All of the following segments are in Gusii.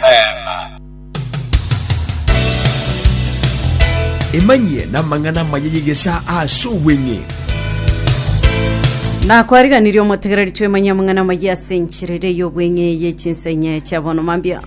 Amen. Emanyie namang'ana amaya y'egesaa as'obweng'e. Na kwariganirie omotegereri twemanyie amang'ana amaya ase enchera eria y'obweng'e ye chinsa enye chia bono mambia.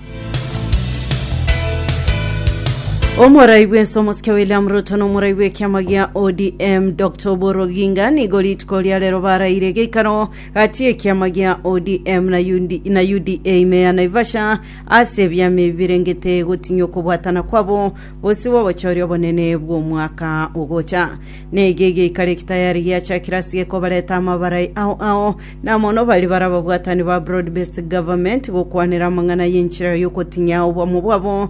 Omorai bw'ense omosike William Ruto na omorai bw'ekiama gia ODM Dr. Oburu Oginga nigo rituko ria rero baraire geikaro Gati ekiama gia ODM na, UD, na UDA ime ya Naivasha ase ebiama ebi birengete gotinyia okobwatana kwabo gose gw'ogochooria obonene bw'omwaka ogocha. Neiga egeikaro eki tayari giachakire ase gekobareta amabarai ao ao, na mono baria bare ababwatani ba Broad Based Government gokwanera amang'ana y'enchera y'ogotinyia obomo bwabo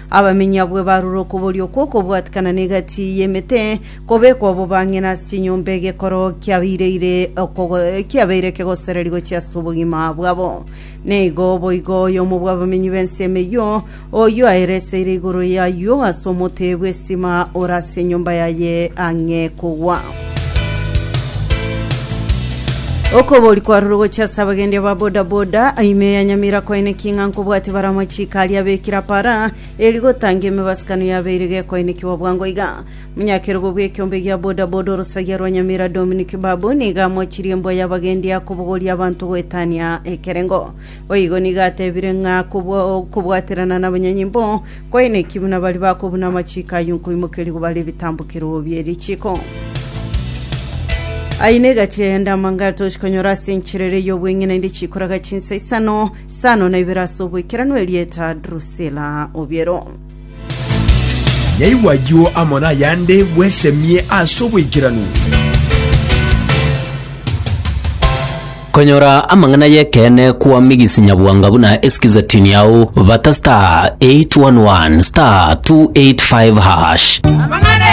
Abaminyi abwo ebarure okoboria okwo okobwatikana n'egati y'emete, kobekwa obobang'ina ase chinyomba egekoro kiabeire okogo- kiabeire ekegosereri gochia ase obogima bwabo. Neigo boigo oyomo bw'abaminyi b'ensemo eyio, oyio aereseire igoro y'ayio ase omote bw'esitima ore ase enyomba yaye ang'e kogwa. Okobori kwarure gochia ase abagendia ba bodaboda ime ya Nyamira kwaineki ng'a nkobwati bare amachiko aria abekire apara eri gotangia emebasukano yabeire gekoinekiwa bwango iga. Munyakerogo bw'ekiombe gia bodaboda orosagia rwa Nyamira Dominic Babu nigo amochirie embwa y'abagendia kobogoria abanto goetania ekerengo. Boigo nigo atebire ng'a kobua okobwaterana na abanyanyimbo kwaineki buna baria bakobuna amachiko ayio nkoimokeria kobara ebitambo kerogo bie richiko. Aye negachi eyende amanga atochi konyora ase enchera ere y'obweng'ina inde chikoraga chinsa isano, isano na ibere ase oboikeranu erieta Drusila Obiero. Nyaigwe ayio amo nayande bwesemie ase oboikeranu. Konyora amang'ana y'ekeene kwa Migisi Nyabwanga buna esikize tini yao, bata star 811 star 285 hash. Amang'ana